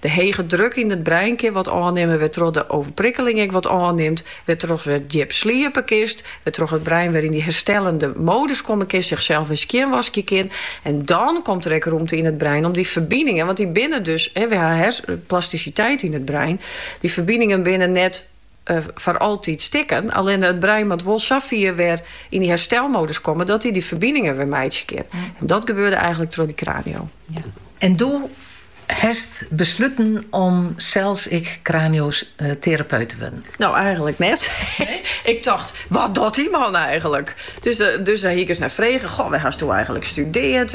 De hege druk yn it brein kin wat ôfnimme wêrtroch't de oerprikkeling ek wat ôfnimt, wêrtroch't wer djip sliepe kinst, wêrtroch't it brein wer yn dy herstellende modus komme kinst, sichsels wer skjinwaskje kin. En dan komt der ek rûmte yn it brein om dy ferbiningen, want dy binne dus, wy ha plastisiteit yn it brein, dy ferbiningen binne net, foar altyd stikken. Allinne it brein moat wol sa fier wer yn dy herstelmodus komme dat hy dy ferbiningen wer meitsje kin. En dat gebeurde eigenlik troch dy kranio. En doe hast besluten om sels ek kranioterapeut te wurden? No, eigenlik net. Ik tocht, wat docht dy man eigenlik? Dus dêr hie ik ris nei frege, goh, wêr hasto eigenlik studeard?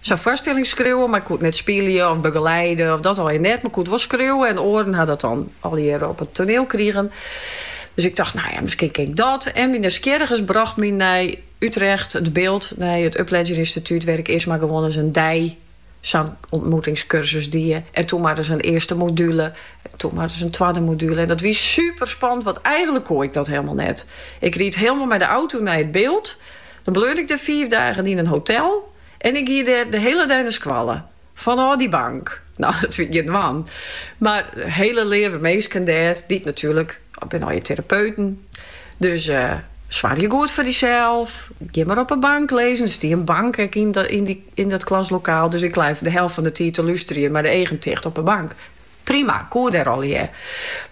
Sa'n foarstelling skriuwe, mar koe it net spylje of begeleide of dat allegear net, mar koe it wol skriuwe en oaren ha dat dan allegear op it toaniel krigen. Dus ik tocht, nou ja, miskien kin ik dat. En myn nijsgjirrigens brocht my nei Utrecht, It Bilt, nei it Upledger Instituut, wêr't ik earst mar gewoan ris in dei sa'n ûntmoetingskursus die en toen mar ris in earste module en toen mar ris in twadde module. En dat wie superspannend, want eigenlik koe ik dat hielemaal net. Ik ried hielemaal mei de auto nei It Bilt. Dan bleau ik der fiif dagen yn in hotel en ik gie dêr de hiele dei nei skoalle, fanôf dy bank. No, dat wie gjin dwaan, mar hiele leave minsken dêr, dy't natuerlik binne allegear terapeuten. Dus soargje goed foar dysels, gean mar op 'e bank lizzen, der stie in bank ek yn dat klaslokaal, dus ik lei de helft fan 'e tiid te lústerjen mei de eagen ticht op 'e bank. Prima, koe dêr allegear.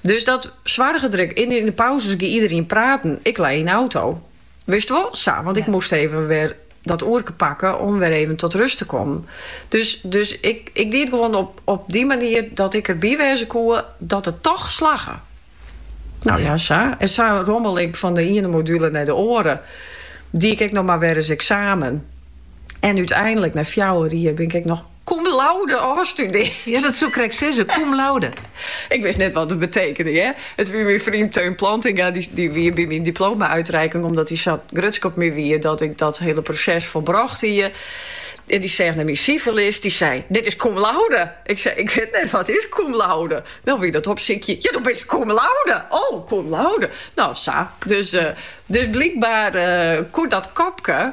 Dus dêr soarge 'k dêr ek, yn 'e pauzes gie iderien praten, ik lei yn 'e auto. Wist wol, sa, want ik moast even wer dat oerke pakke om wer even tot rust te kommen. Dus, dus ik, ik die it gewoan op, op dy manier dat ik derby wêze koe dat it toch slagge. Nou ja, sa. En sa rommele ik fan de iene module nei de oare. Die ik ek noch mar wer ris eksamen. En úteinlik, nei fjouwer jier, bin ik ek noch Cum laude ôfstudeard. Ja, dat soe ik krekt sizze. Cum laude. ik wist net wat it betekende, hear. It wie myn freon Teun Plantinga, dy, dy wie by myn diploma-uitreiking, omdat hy sa grutsk op my wie, dat ik dat hiele proses folbrocht hie. En dy seach nei myn siferlist, dy sei, Dit is cum laude! Ik sei, Ik wit net wat is cum laude. No wie dat opsykjen. Ja, do bist cum laude! O, cum laude! No, sa. Dus, eh, dus blykbaar eh, koe dat kopke,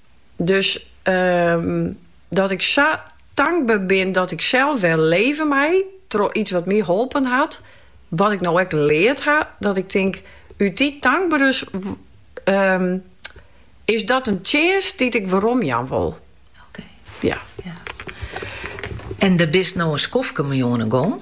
Dus dat ik sa tankber bin dat ik sels wer leve mei troch iets wat my holpen hat, wat ik no ek leard ha, dat ik tink, út dy tankberes is dat in tsjinst dy't ik weromjaan wol. En der bist no in skoftke mei oan 'e gong?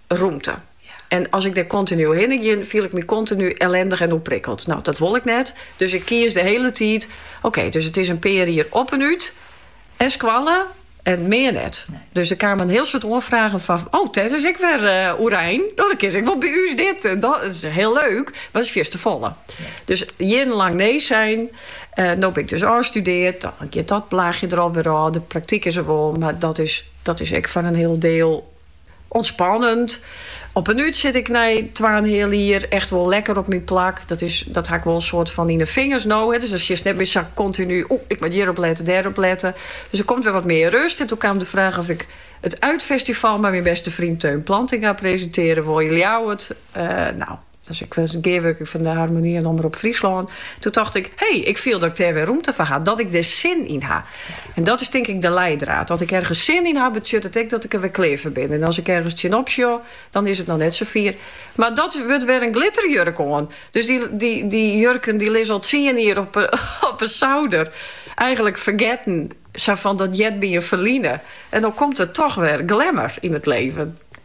rûmte. En as ik dêr kontinu hinne ging, fielde ik my kontinu ellendich en oerprikkeld. No, dat wol ik net. Dus ik keas de hiele tiid, oké, dus it is in pear jier Op en Ut en skoalle en mear net. Dus der kamen in hiel soad oanfragen fan, oh, Iris is ek wer oerein, no dan kin se wol by ús dit en dat. Dat is hiel leuk, mar dat is fierstefolle. Dus jierrenlang nee sein. No bin ik dus ôfstudeard, dan giet dat laachje der alwer ôf. De praktyk is der wol, mar dat is ek foar in hiel deel. Ûntspannend. Op en Ut sit ik nei twa en in heal jier echt wol lekker op myn plak. Dat is, dat ha ik wol in soad fan yn 'e fingers no. Dus dan sjochst net mear sa kontinu, o, ik moat hjirop lette, dêrop lette. Dus der komt wer wat mear rust. En doe kaam de fraach oft ik it Uitfestival mei myn beste freon Theun Plantinga presintearje woe yn Ljouwert. Nou. sa'n gearwurking fan de Harmonie en Omrop Fryslân, doe tocht ik, hey, ik fiel dat ik dêr wer rûmte foar ha, dat ik der sin yn ha. En dat is tink ik de liedried. As ik ergens sin yn ha, betsjut it ek dat ik der wer klear foar bin. En as ik ergens tsjinop sjoch, dan is it noch net safier. Mar dat wurdt wer in glitterjurk oan. Dus dy, dy, dy jurken dy lizze al tsien jier op, op 'e souder. Eigenlik fergetten, sa fan dat heart by in ferline. En dan komt der toch wer glamour yn it leven.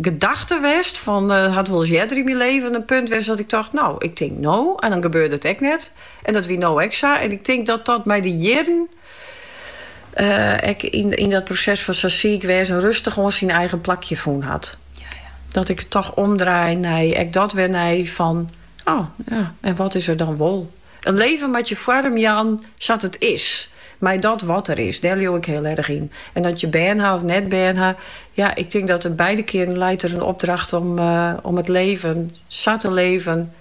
gedachte west fan it hat wolris earder yn myn leven in punt west dat ik tocht no ik tink no en dan gebeurde it ek net en dat wie no ek sa en ik tink dat dat mei de jierren ek yn dat proses fan sa siik wêze en rustich oan syn eigen plakje fûn hat dat ik it toch omdraai nei ek dat wer nei fan o ja en wat is der dan wol. In leven moatte je foarm jaan sa't it is, mei dat wat der is, dêr leau ik hiel erg yn. En oft je bern ha of net bern ha, ja, ik tink dat der beide kearen leit der in opdracht om it leven sa te leven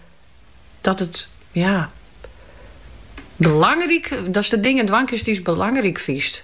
dat it, ja, belangryk, datst de dingen dwaan kinst dy'tst belangryk fynst.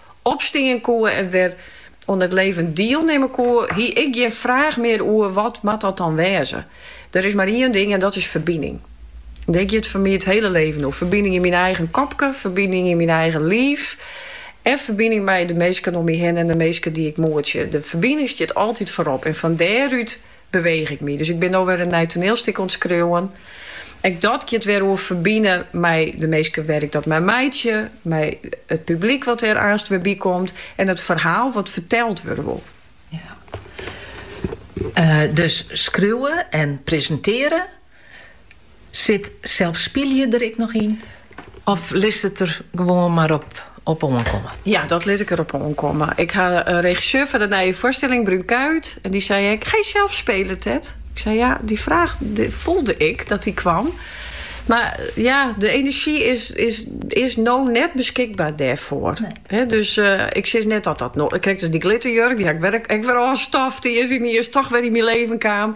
opstean koe en wer oan it leven dielnimme koe, hie ik gjin fraach mear oer wat moat dat dan wêze. Der is mar ien ding en dat is ferbining. Dêr giet foar my it hiele leven oer, ferbining yn myn eigen kopke, ferbining yn myn eigen liif en ferbining mei de minsken om my hinne en de minsken dy't ik moetsje. De ferbining stiet altyd foarop en fan dêrút Beweech ik my. Dus ik bin no wer in nij toneelstik oan it skriuwen. Ek dat giet wer oer ferbine mei de minsken wêr't ik dat mei meitsje, mei it publyk wat der aanst wer by komt en it ferhaal wat ferteld wurde wol. Ja. Dus skriuwe en presintearje Sit sels spylje der ek noch yn of litst it der gewoan mar op oankomme? Ja, dat lit ik der op oankomme. Ik ha in regisseur foar de nije foarstilling, Bruun Kuijt, en dy sei ek, Ga je zelf spelen, Tet? Ik sei ja, die vraag voelde ik dat die kwam. Mar ja, de enerzjy is, is, is no net beskikber dêrfoar. Nee. dus uh, ik sis net dat dat no. Ik krige dus dy glitterjurk, dy ha ik wer ôfstoft, dy is dy is toch wer yn myn leven kaam.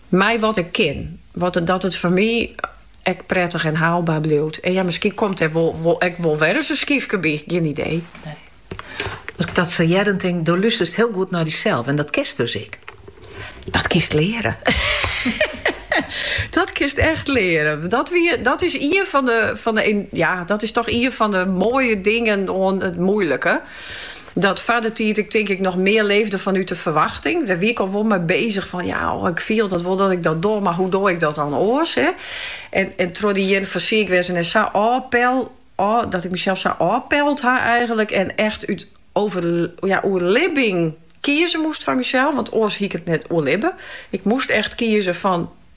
Mei wat ik kin. Wat dat it foar my ek prettich en haalbaar bliuwt. En ja, miskien komt dêr wol ek wol wer ris in skyfke by. Gjin idee. Nee. As ik dat sa hear, dan tink ik, do lústerst hiel goed nei dysels. En dat kinst dus ek. Dat kinst leare. dat kinst echt leare. Dat, wie, dat is ien fan de, fan de. Ja, dat is toch ien fan de moaie dingen oan it moeilike. Dat foar dy tiid ik tink ik noch mear leefde fanút de ferwachting. Dêr wie ik al wol mei bezich fan ja, oh, ik fiel dat wol dat ik dat doch, mar hoe doch ik dat dan oars? Hè? En, en troch dy jierren fan siik wêzen en sa ôfpel, ôf, dat ik mysels sa ôfpeld ha eigenlik en echt út over, ja, oerlibbing kieze moast foar mysels, want oars hie ik it net oerlibbe. Ik moast echt kieze fan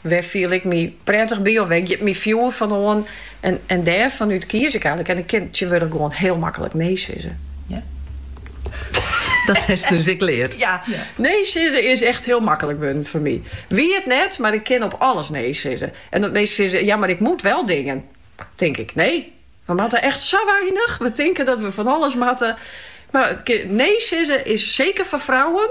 Wêr fiel ik my prettich by of wêr giet myn fjoer fan oan? En dêrfanút kies ik eigenlik. En ik kin tsjintwurdich gewoan hiel maklik nee sizze. Ja. Dat hast dus ek leard. Ja, nee sizze is echt hiel maklik wurden foar my. Wie it net, mar ik kin op alles nee sizze. En dat minsken sizze, ja, mar ik moat wel dingen. Tink ik, nee, we moatte echt sa weinich. We tinken dat we fan alles moatte. Mar nee sizze is, seker foar frouwen,